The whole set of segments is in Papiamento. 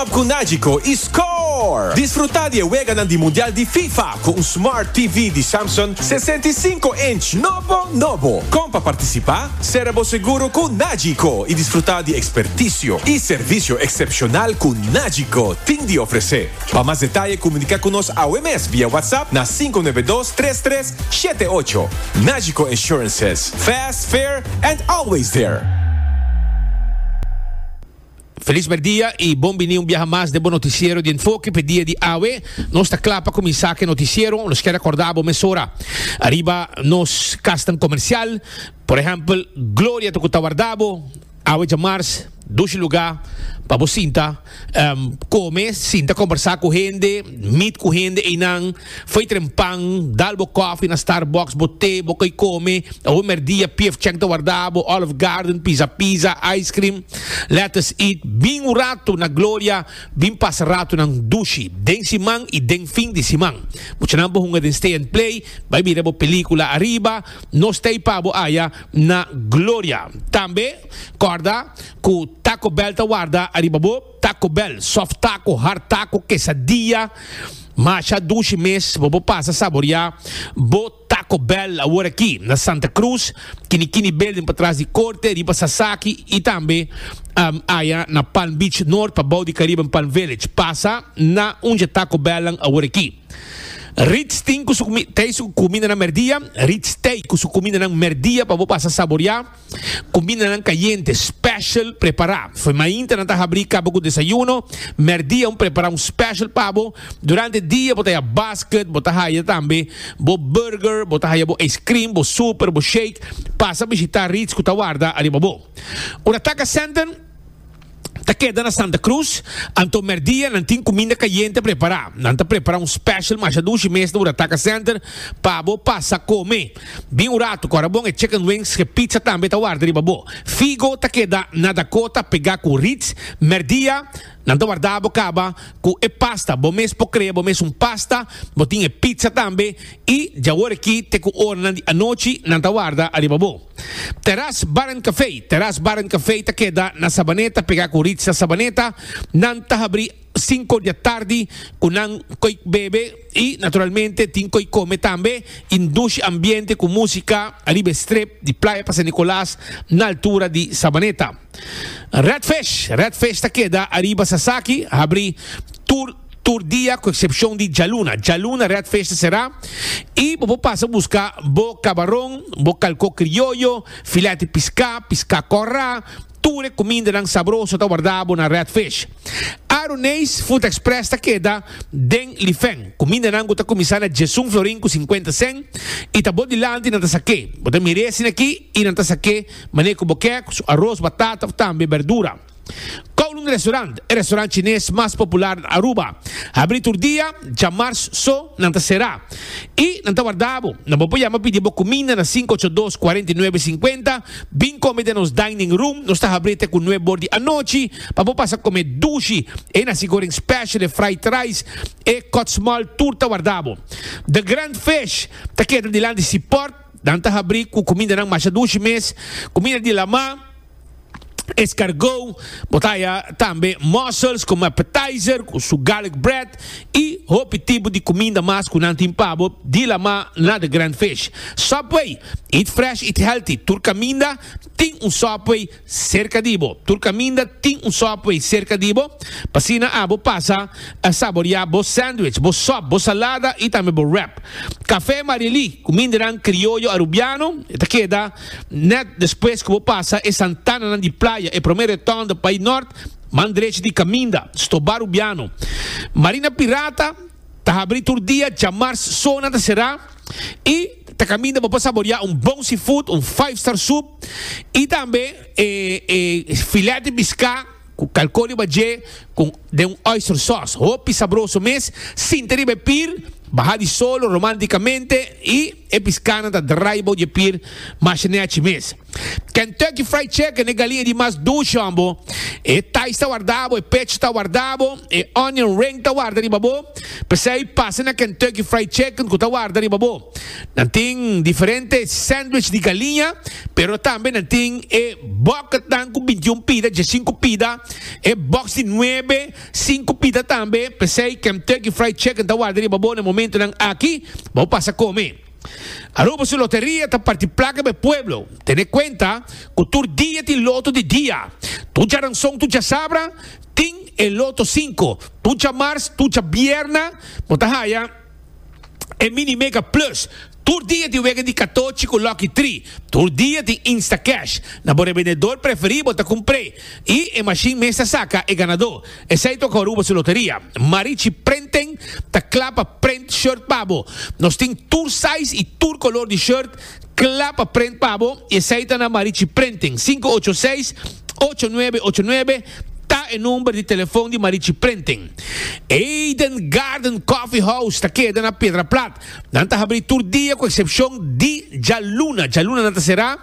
Shop cu Nagico y Score! Disfruta di e weganan di Mundial di Fifa cu un Smart TV di Samsung sesenta i sinku inch nobo nobo. Con pa participa? Sera bo seguro cu Nagico y disfruta di experticio y servicio excepcional cu Nagico tin di ofrece. Pa mas detaye comunica cu nos awe mes via WhatsApp na sinku nuebe dos tres tres shete ocho. Nagico Insurances, fast, fair and always there! Felis merdia y bon bini un biaha mas den bo noticiero di Enfoke p'e dia di awe. Nos ta cla pa cuminsa cu e noticiero. Nos kier recorda bo mesora ariba nos casnan comercial. Por ehempel Gloria ta cu ta warda bo awe djamars dushi luga pa bo sinta come, sinta combersa cu hende, meet cu hende eynan. Foi tren pan, dal bo kofi na Starbucks, bo te, bo koi kome, awo merdia pief chèk ta warda bo, Olive Garden, Pizza Pizza, ice cream, let us eat, bin un ratu na Gloria, bin pasa ratunan dushi den siman i den fin di siman. Muchanan bo hunga den Stay and Play, bai bira bo pelíkula ariba, nos ta i pa bo aya na Gloria. Tambe kòrda ku Taco Bell ta warda ariba bo. Taco Bell, soft taco, hard taco, quesadilla, masha dushi mes bo por pasa saboria bo Taco Bell awor aki na Santa Cruz, kini kini building patras di Corte riba Sasaki y tambe um aya na Palm Beach North pa bou di Caribe en Palm Village. Pasa na un dje Taco Bell nan awor aki. Ritz tin ku su kumi, tei su kumindanan merdia, Ritz tei ku su kumindanan merdia pa bo pasa saboria. Kumindanan kayente special prepará. Fo'i mainta nan ta habrí kaba ku desayuno, mèrdia un prepará un special pa bo. Durante dia bo ta haya basket, bo ta haya tambe bo burger, bo ta haya bo ice cream, bo super, bo shake. Pasa bishitá Ritz ku ta warda ariba bo. Ora taka sènten. ta keda na Santa Cruz, anto merdia nan tin cuminda cayente prepara. Nan ta prepara un special masha dushi mes na Urataca Center pa bo pasa come. Bin un rato, cora bon e chicken wings ke pizza tambe ta warda riba bo. Figo ta keda na Dakota pega cu Ritz. Merdia nan ta warda bo caba cu e pasta. Bo mes por crea bo mes un pasta, bo tin e pizza tambe y djawor aki te cu oranan di anochi nan ta warda ariba bo. Teras Bar and Café, Teras Bar and Café ta keda na Sabaneta pegá ku Ritza Sabaneta. Nan ta habrí sinku di atardi ku nan koe bebe i naturalmente tin koe kome tambe i ndushi ambiente ku músika ariba e strip di Playa pa San Nicolas na altura di Sabaneta. Red Fish, Red Fish ta keda ariba Sasaki, habrí tur. tur dia cu excepcion di djaluna. Djaluna Red Fish ta cerá y bo por pasa busca bo cabaron, bo calcó crioyo, filet di piscá, piscá corrá, tur e cumindanan sabroso ta wardabo na Red Fish. Aruneis Food Express ta keda den Lifen. Cumindanan cu ta cuminsá na djesun florin cu cincuenta cent y ta bo dilanti nan ta saqué. Bo ta mir'e asina aki y nan ta saqué manera cu bo kier, cu su aros, batata of tambe berdura. Kowloon Restaurant, e restaurant chines mas popular na Aruba, habri tur dia, djamars so nan ta sera. I nan ta warda bo. Nan por por yama pidi bo kuminda na sinku ocho dos kuarenta i nuebe sinkuenta, bin kome den nos dining room, nos ta habri te ku nueb bor di anochi pa bo pasa kome dushi, e nasi goreng special, e fried rice, e kotsmal tur ta warda bo. The Grand Fish ta keda dilanti si port, nan ta habri ku kumindanan masha dushi mes, kuminda di lama, escargot, bo ta haya tambe mussels como appetizer cu su garlic bread y hopi tipo di cuminda mas cu nan tin pa bo dilamá na The Grand Fish. Subway, Eat fresh, eat healthy, tur caminda tin un Subway cerca di bo. Tur caminda tin un Subway cerca di bo, p'asina abo pasa a saboreá bo sandwich, bo sop, bo salada y tambe bo wrap. Café Marie Lee, cumindanan criollo Arubiano, e ta keda. Nèt despues ku bo pasa e santananan di playa, e promé retòn ta bai nòrt, man drechi di kaminda, stobá Rubiano. Marina Pirata ta habrí tur dia, djamars sona ta será i ta kaminda bo pa saboriá un bon seafood, un five star soup i tambe e filèt di piská. Cu calco riba dje con den un oyster sauce. Hopi sabroso mes. Sinta riba e pir, baha di solo romanticamente y e piscanan ta draai bou dje pir masha nechi mes. Kentucky Fried Chicken, e galinha di mas ducion bo, e thighs ta warda bo, e pecho ta warda bo, e onion ring ta warda riba bo. P'esey pasa na Kentucky Fried Chicken cu ta warda riba bo. Nan tin diferente sandwich di galiña, pero tambe nan tin e bòketnan ku bintiun pida, djasinku pida, e bòks di nuebe, sinku pida tambe. P'esei Kemtucky Fried Chicken ta warda riba bo na e momentunan aki pa bo pasa kome. Aruba su loteria ta parti plaka pa e pueblo. Tene kuenta ku tur dia tin loto di dia. Tur djaranson, tur djasabra tin e loto sinku. Tur djamars, tur djabièrna bo ta haya. e Mini Mega Plus tur dia di wega di katochi ku Lucky Tri tur dia tin Instacash na bo rebendedor preferí bo ta kumpr'é i e mashin mes ta saka e ganadó esei tok Aruba su loteria Marichi Prenting ta kla pa prent shirt pa bo nos tin tur size i tur kolor di shirt Kla pa prent pa bo, i esei ta na Marichi Prenting. Sinku ocho seis, ocho nuebe ocho nuebe ta e number di telefon di Marichi Prenting. Eden Garden Coffee House ta keda na Piedra Plat. Nan ta habri tur dia ku eksepshon di djaluna. Djaluna nan ta será.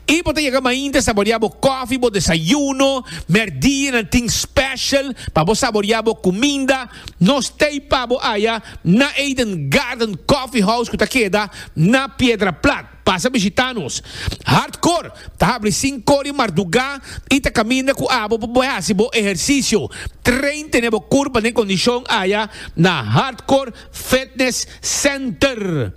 I bo ta yega mainta saboriá bo kofi, bo desayuno. Mèrdie nan tin special pa bo saboriá bo kuminda. Nos tei pa bo aya na Eden Garden Coffee House cu ta keda na Piedra Plat. Pasa bishita nos. Hardcore ta habri cinco di marduga y ta caminda cu abo pa bo haci bo ehercicio. Train tene bo curpa den condicion aya na Hardcore Fitness Center.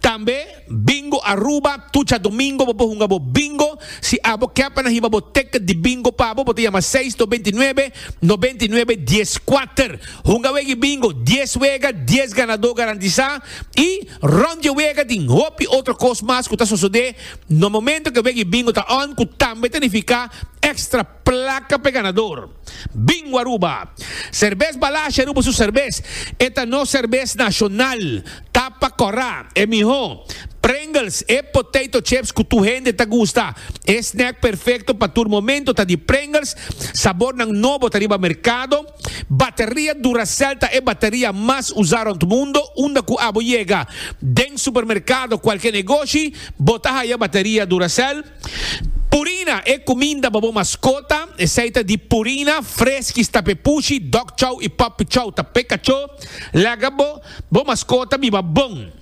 Tambe Bingo Aruba, Tucha Domingo, bo por hunga bo Bingo. Si abo ke pa nan hiba bo ticket di Bingo pa bo, bo ta yama seis dos binti nuebe, nobenta i nuebe, dies kuater. Hunga wega i Bingo, dies wega, dies ganadó garantisá, i rònt dje wega tin hopi otro kos mas ku ta sosodé na momento ke wega i Bingo ta on, ku tambe ta nifiká extra. Placa pe ganador. Bingo Aruba. Serbes Balashi Aruba su serbes. E ta nos serbes nacional. Tapa cora. E miho. Pringles, e potato chips cu tur hende ta gusta. E snack perfecto pa tur momento ta di Pringles. Sabornan nobo ta riba mercado. Bateria Duracell ta e bateria mas usa rond mundo. Unda cu abo yega den supermercado, cualkier negoshi, bo ta haya bateria Duracell. Purina, e kuminda pa bo maskota, esei ta di Purina, Freskies, Tapepushi, Dog Chow i Puppy Chow, ta peka cho. Laga bo bo maskota biba bon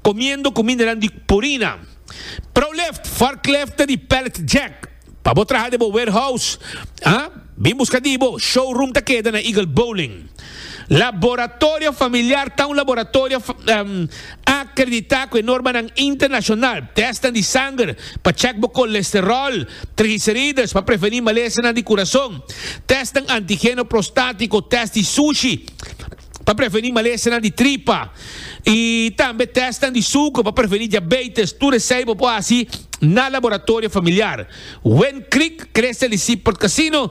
komiendo kumindanan di Purina. Proleft, Forklift ta di Pallet Jack pa bo traha den bo warehouse. Bin buska di bo. Showroom ta keda na Eagle Bowling. Laboratorio Familiar ta un laboratorio akreditá ku e normanan internashonal. Tèstnan di sanger pa chèk bo kolesteròl, trigliserides pa prevení malesanan di kurason, tèstnan antigeno prostátiko, tèst di sushi pa prevení malesanan di tripa i tambe tèstnan di suker pa prevení diabeites. Tur esei bo por hasi na Laboratorio Familiar. Wen Creek, Crestel i Seaport Casino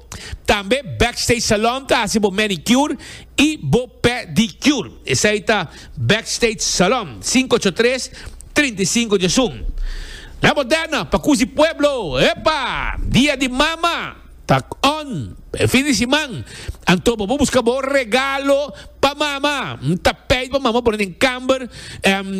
Tambe Backstage Salon ta hasi bo manicure y bo pedicure. Esai ta Backstage Salon, sinku ocho tres, trinta i sinku dje sum. Na bo dèna pa kusi pueblo. Epa! Dia di Mama ta on e fin di siman, anto bo por buska bo regalo. Pa mama, N ta peit pa mama pone den kamber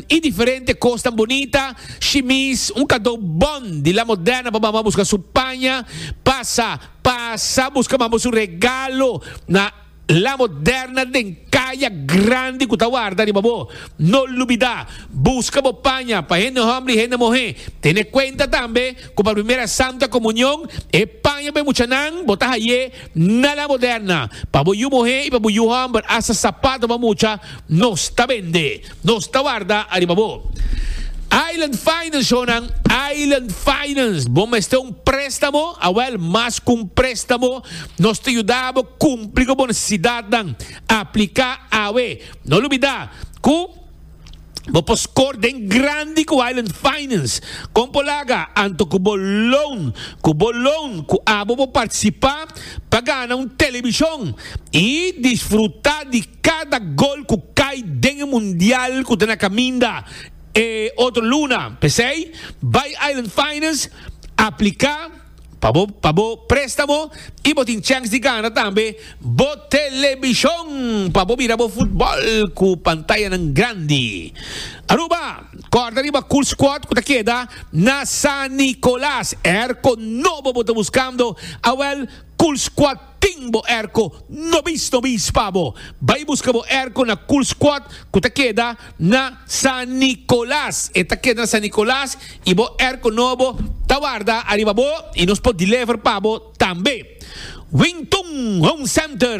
i diferente kosnan bunita, shimis, un kadó bon di la moderna pa mama buska su paña, pasa, pasa buska mama su regalo na la moderna den kaya grandi ku ta warda riba bo. No lubidá, buska bo paña pa hende hòmber i hende muhé. Tene kuenta tambe ku pa e primera santa komunion e paña pa e muchanan bo ta haye, Na la moderna, pa bo yu muhé i pa bo yu hòmber asta sapatonan mucha nos ta bende, nos ta warda ariba bo. Island Finance Honan, Island Finance, bo mester un préstamo? Awèl, mas ku un préstamo, nos ta yuda bo kumpli ku bo nesesidatnan. Apliká awe! No lubidá ku. Bo por score den grandi ku Island Finance. Kon por laga? Anto ku bo loan. Ku bo loan ku abo bo partisipa pa gana un televishon i disfruta di kada gol ku kai den e mundial ku ta na kaminda e otro luna. P'esei bai Island Finance, apliká. Pa bo pa bo préstamo i bo tin chèns di gana tambe bo telebishon pa bo mira bo futbòl ku pantayanan grandi. Aruba, Kòrda riba Cool Squad ku ta keda na San Nicolas. Airco nobo bo ta buskando? Awèl, Cool Squad Tin bo erko no bis no bis pa bo. Bai buska bo erko na Cool Squad ku ta keda na San Nicolas. E ta keda na San Nicolas i bo erko nobo ta warda ariba bo i nos por deliver pa bo tambe. Wing Tun Home Center.